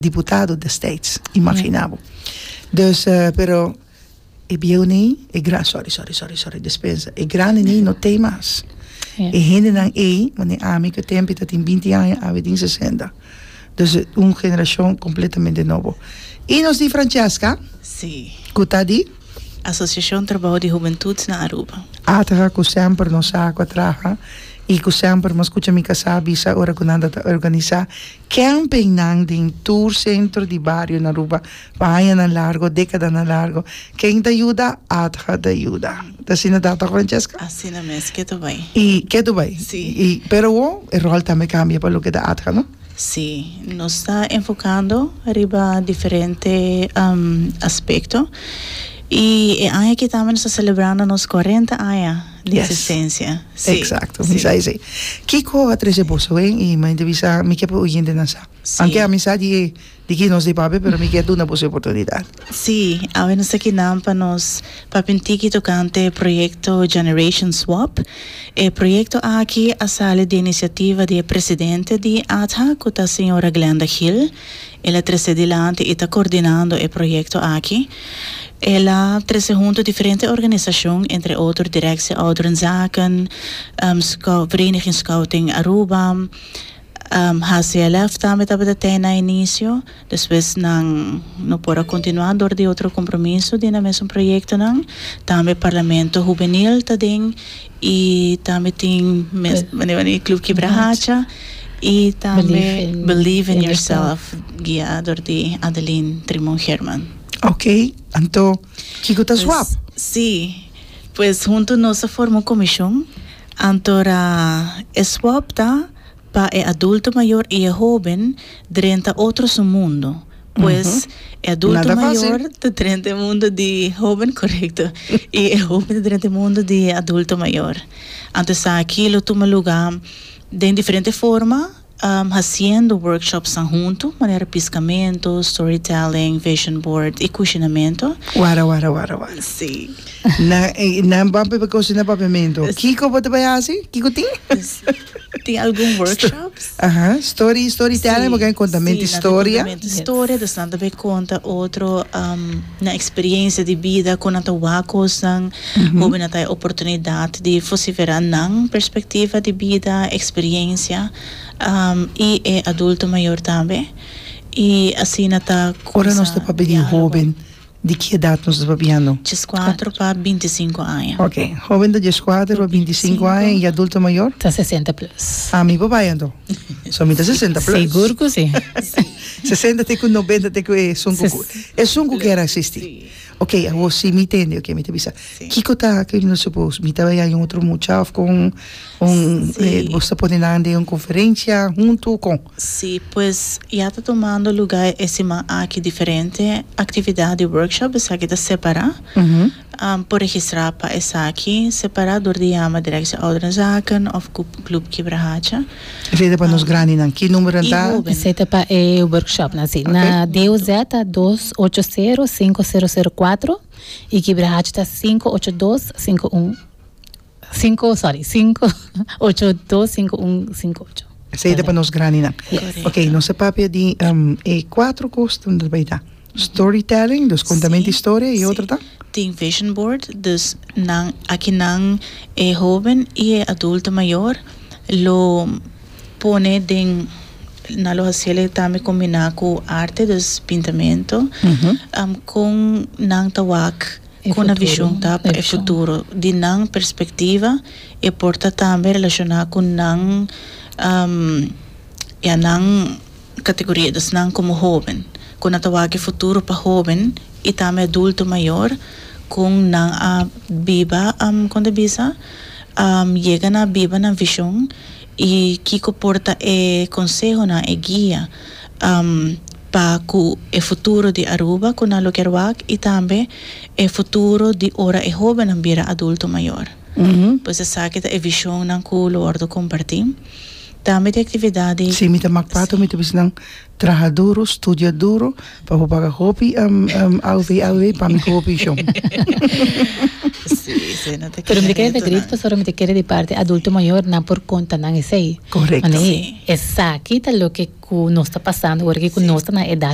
diputado desteits, imaginá bo. Dus, pero e bieu nei, e gran, sòri, sòri, sòri, sòri, dispensa, e grandi nei no tei mas. E hendenan ei, manera ami ku Tempi ta tin binti aña, ami tin sesenta. Dus un generashon kompletamente nobo. I nos di Francesca, ku ta di. Asosiashon Trabou di Hubentuds na Aruba. Atra ku semper nos sa ku a traha i ku semper mas kucha mi kasa bisa ora ku nan ta organisá. Campingnan den tur centro di bario na Aruba pa añanan largo, decadanan largo. Ken ta yuda? Adha ta yuda. Ta asina ta tok Francesca? Asina mes, ke ta bay. Y ke ta bay. Si. Y pero awo e rol tambe cambia pa loke ta Adha, no? Si, nos ta enfocando riba diferente aspecto y e aña aki tambe nos ta celebrando nos cuarenta aña. di asistencia. Si. Exacto, mi sa esey. Kiko a trece boso wen y mi ta bisa mi ke por oyentenan sa. Si. Aunke ami sa di e di quién nos di pape pero mi ke duna boso e oportunidad. Si, awe nos ta kinan pa nos papia un tiki tocante e proyecto Generation Swap. E proyecto aki a sali di iniciativa di e presidente di ATHA cu ta señora Glenda Gil. El a trece dilanti y ta coordinando e proyecto aki. El a trece hunto diferente organisacion, entre otro Directie Ouderenzaken, Vereniging Scouting Aruba, HCLF tambe tabata tey na inicio, despues nan no por a continua door di otro compromiso di nan mesun proyectonan. Tambe Parlamento Juvenil ta den. Y tambe tin mes bani bani e club Kibra Hacha y tambe Believe in Yourself guia door di Adeline Trimon Herman. Ok, anto kico ta swap? Si, pues hunto nos a forma un comision, anto ra e swap ta. Pa e adulto mayor y e hoben drenta otro su mundo. Pues, e adulto mayor ta drenta e mundo di e hoben, corecto, y e hoben ta drenta e mundo di e adulto mayor. Anto esaki lo tuma luga den diferente forma, haciendo workshopsnan hunto, manera piscamento, storytelling, vision board y cushinamento. Wara, wara, wara, wara. Sí. Nan, nan bo a papia cocina, papiamento. Kico bo ta bay haci? Kico tin? Tin algun workshops? Aha, story, story telling, bo ken konta mente historia. Si, nan ta konta mente historia, dus nan ta bai konta otro nan eksperiencia di bida, kon nan ta wak kosnan, hopi nan ta haya oportunidat di fosifera nan perspektiva di bida, eksperiencia, i e adulto mayor tambe, i asina ta. Ora nos ta papia di hoben. Di ki edat nos ta papiando? Dieskuater pa bintisinku aña. Ok. Hoben ta dieskuater pa bintisinku aña i adulto mayor? Ta sesenta plus. Ah, mi por bai anto? So mi ta sesenta plus. Sigur ku si. Sesenta te ku nobenta te ku e sunku ku e sunku ke a sisti. Ok, awor si mi tende, ok, mi ta bisa kiko ta ke mi ta supos? Mi ta bai haña un otro mucha of kon? Bo ta pone nan den un konferensia huntu kon? Sí pues, ya ta tumando lugá e siman aki diferente aktividat di workshop esaki ta separá. Por registrá pa esaki separá dor di yama Direktie Ouderenzaken òf ku Klub Kibra Hacha. Esei ta pa nos grandinan. Ki numbernan ta? Esei ta pa e workshopnan, sí. Na DOZ ta dos ocho sero sinku sero sero kuatro i Kibra Hacha ta sinku ocho dos sinku un Cinco, sorry, cinco, ocho, dos, cinco, un, cinco, ocho. Esei ta pa nos graninan. Yes. Ok, nos ta papia di um, e cuatro cos ta bay ta. Storytelling, dus contamento Sí, historia, y sí. otro ta? Tin vision board, dus nan, aki nan e hoben y e adulto mayor lo pone den, nan lo hacele tambe combina cu arte, dus pintamento, um, con nan ta wak. Kon a bishon ta pa e futuro? Di nan perspektiva e por ta tambe relashoná ku nan ya nan kategoria esnan komo hóben kon a ta wak e futuro pa hóben i tambe adulto mayor kon nan a biba kon ta bisa yega nan a biba nan vishon i kiko por ta e konsehonan e guia pa ku e futuro di Aruba ku nan lo kier wak i tambe e futuro di ora e hóbennan bira adulto mayor. Pues esaki ta e vishonnan ku lo wòrdu kompartí. Tambe tin aktividat di. Si mi ta mak parti mi ta bisa nan traha duru, studia duru pa por paga hopi AOV pa mi ku hopi shon. Sí, esei no ta kere. Pero mi ta kere ta grita pasobra mi ta kere di parti adulto mayor nan por konta nan esei. Correcto. Esaki ta loke cu nos ta pasando ora cu nos ta na edad